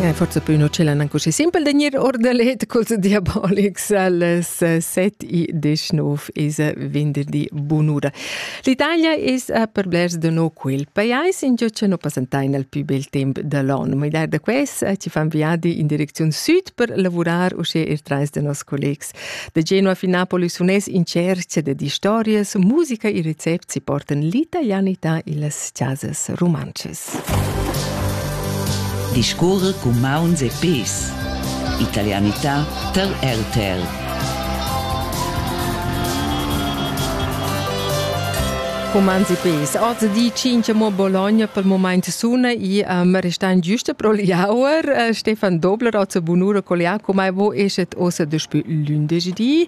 Eh, forse più non ce l'hanno così simpel da gnir ordalet cos diabolics alles 7 e 19 is venderdi bunura. L'Italia is a per blers de no quel paiais in giò no passentai nel più bel temp dell'anno, ma idar da ques ci fan viadi in direczione sud per lavorare usce ir trais de nos collegs. De Genova fin Napoli sunes in cerca de di stories, musica e recept si portan l'italianità e las casas romances. Discurrer cun mauns e pes. Italianità per RTL. Romans e pes. Oz di 5 mo Bologna pel moment suna e um, restan giuste pro l'auer. Stefan Dobler, oz bunura col Jacomo, vo eschet ossa daspü lündesch di.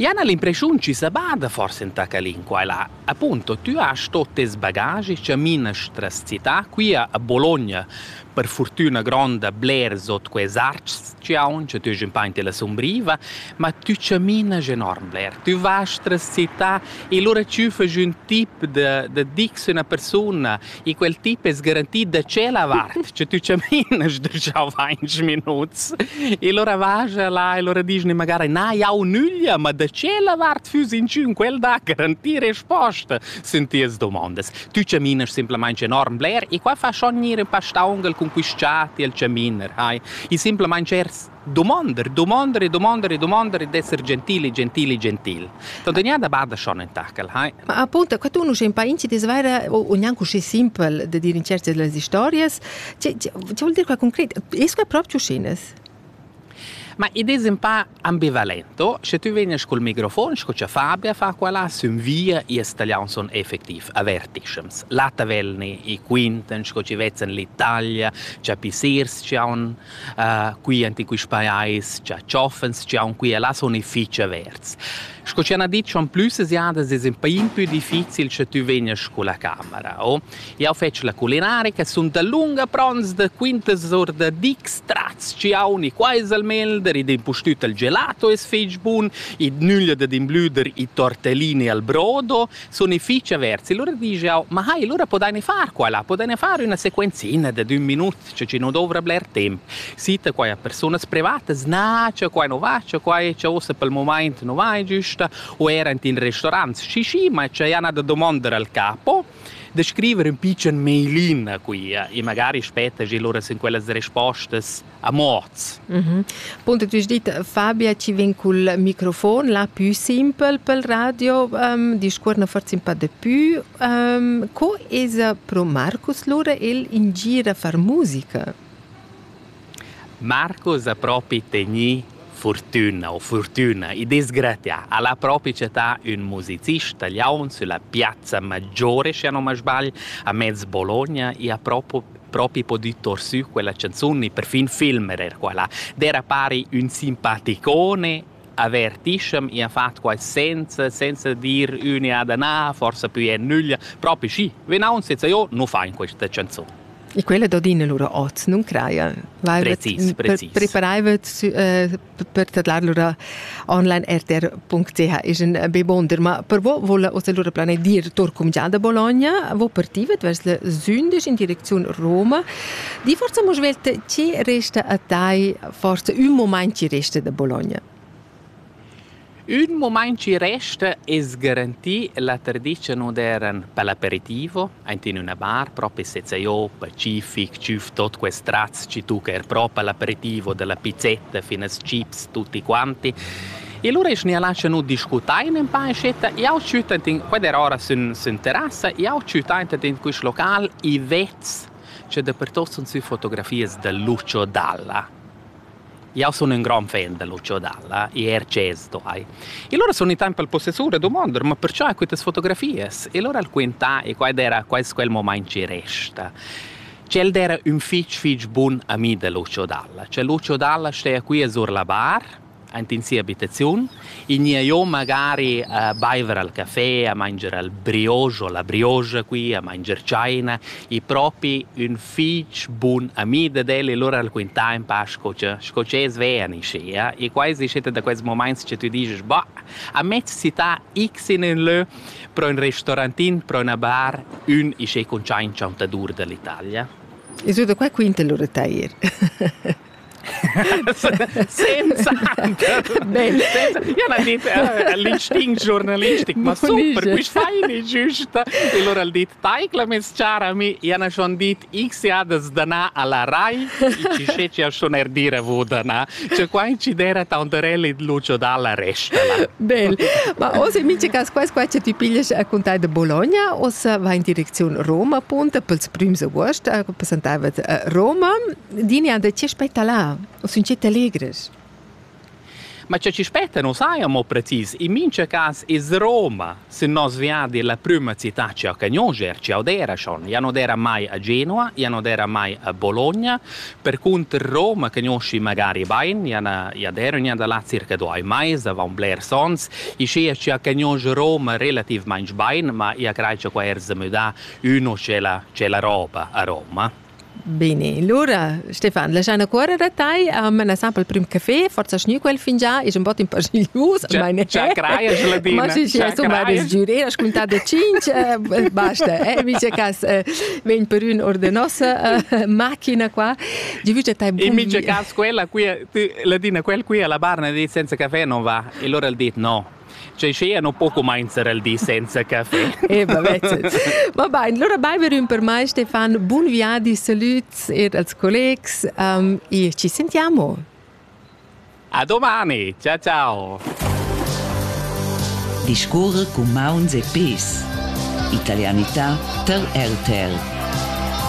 Jan ha l'impressiun chi sa bada forsa ün tac a l'inqua e là. Appunto, tü hast tot tes bagagi, chaminas tras città, quia a Bologna, per furtüna gronda blers ot quels archs chi haun, cha tü hes ün pa in tela sumbriva, ma tü chaminas enorm bler. Tü vas tras città e lura tü fast ün tip da da dir cu üna persuna E quel tip es garanti da tschella vart, che tü chamin sdrschau vainch minuts. E lura vaja là e lura dischne magari na jau nüglia, ma da tschella vart füss inchün quel da garantir resposta sun tias domondas. Tü chaminas simplamaing enorm bler e qua fa schon gnir ün pa staungel cun quist chat e il chaminer, hai. E simplamaing ers Domander, domander e domander e domander e d'esser gentili, gentili, gentil. Tant gnà da bada schon enta quel, hai. Ma appunto, qua tu nu sei un pa inci disvaira o, o gnanco così simpel de dire in certi delle historias. Ci, ci, ci vuol dire qua concret, esco è proprio uscinas? Ma id es un pa ambivalento, sche tu vegnas col microfon, sco cha Fabia fa quella, sün via ies talian son effectiv avertiscems. La tavelni, i quintan, sco ci vezzan l'Italia, cha pisirs ci haun uh, qui enti quist pajais cha tschoffens, chi haun qui e là sun i fich averts. Sco ci hanno detto in più se siadas es un pain più difficile se tu venias con la camera. Oh. Io faccio la culinaria che sono da lunga pronts da quintas or da dic strats ci hauni quais almeno der id impustüt al gelato es fich bun, id nüglia da imblüder i tortellini al brodo sun i fich averts. E lura disch jau, ma hai, lura podaine far quella, podaine far üna sequenzina da d'ün minut, che chi nu douvra bler temp. Sita quai a persunas privatas, na, che quai nu va, che quai, che uossa pel momaint nu va giüsta, o eir ant in restaurants. Schi, schi, ma c'è ina da domandar al capo, da scriver ün picen mailin a quia e magari spetta gi lura sin quellas respostas a morts. Mm -hmm. Punto tu dit Fabia ci vin col microfon la più simpel pel radio um, discuor na forz pa de più um, co es pro Marcus Lura el ingira far musica? Marcus ha proprio teni fortuna o fortuna, i disgratia. Alla propria città un musicista liaun sulla piazza maggiore, se non mi sbaglio, a mezzo Bologna, e ha proprio propi podü tour sü quella canzun e perfin filmer er quella. D'era pari ün simpaticone avertischem e ha fatto quai senza, senza dir üniada na, forse più e nüglia, propi schi, venau un senza io nu fa in questa canzun. E quella d'Odina lura oz, non craia? Precis, precis. Preparaivet per tadlar lura onlinertr.ch is in be bonder, ma per vo vola oz lura plane dir tor cumgià da Bologna, vo partivet vers le Zündisch in direcziun Roma. Di forza mo svelt ci resta a tai forse un moment ci resta da Bologna. Ün mumaint chi resta es garantir la tradizia moderna pel aperitivo aint in üna bar propi sezza jo pacific, tschüf tuot quest tratgs chi tuocha eir propi l'aperitivo da la pizzetta fin als chips tutti quanti. E lura eschna ja lascha nu discutain ün pa in scetta. Jau tschüt aint in quella ora sün sün terrassa, jau tschüt aint in quist local i vets cha dapertuot sun sü fotografias da Lucio Dalla. Io sun ün gran fan da Lucio Dalla e Ercés Toai. E lura sun i temp al possessur a dumonder ma perciò quitas fotografias? E lura al quintà e quai d'eira quai quel momaint chi resta. Ch'el d'eira ün fich fich bun ami da Lucio Dalla. Cioè Lucio Dalla steja quia sur la bar, aint in sia abitaziun, i gnia jo magari a baiver al café, a manger al brioche o la brioche qui, a manger tschaina, i propi ün fich bun ami dad el e lur al quintà in pa sco cha sco cha es vean in schea e quai es stata da quels momaints che tü disches bah a mezz città x in ün lö pro ün restorantin pro üna bar ün isché cuntschaint chantadur da l'Italia. E su da qua quinta lur tair. senza Jana dit l'instinct ma super quist feini giusta e lora al dit taicla mes chara mi Jana schon dit x jadas dana alla rai ci sceci a schon er dire vo dana cioè qua incidera taunterelli lucio dalla resta Bel ma o se mice cas quas qua ce ti piglies a contai de Bologna o se va in direczione Roma punta pels prims august a representava Roma Dinia, da ti spetta là, o sun ti allegres? Ma che ci spetta non sai amo precis, in mince cas is Roma, se nos viadi la prima città ci ha cagnoger, ci odera schon, ja non era mai a Genova, ja non era mai a Bologna, per cunter Roma cagnosci magari bain, ja na, ja dero nia da là circa due mais, avant bler sons, i sia ci ha cagnoger Roma relativmain bain, ma ja crei che qua er se müda uno c'è la, c'è la roba a Roma. Bene, lura Stefan, lasciando cuore da tai, um, la sample prim café, forza schni quel fingià, ich un bot in paar gius, meine. Chacraia, geladina. Ma sì, sì, insomma, das giuré, ascoltato cinque, basta, eh, mi c'è cas, ven per un or de nossa macchina qua, di vige tai bum. E mi c'è cas quella qui, ladina, quel qui alla barna di senza caffè non va, e allora il dit no. Cei schea non po comenzer el di senza caffè. Eh, Va bene, allora baiver un per me Stefan, buon viadi, saluts e als collegs um, e ci sentiamo. A domani, ciao ciao. Discorre cu mauns e pes. Italianità per RTL.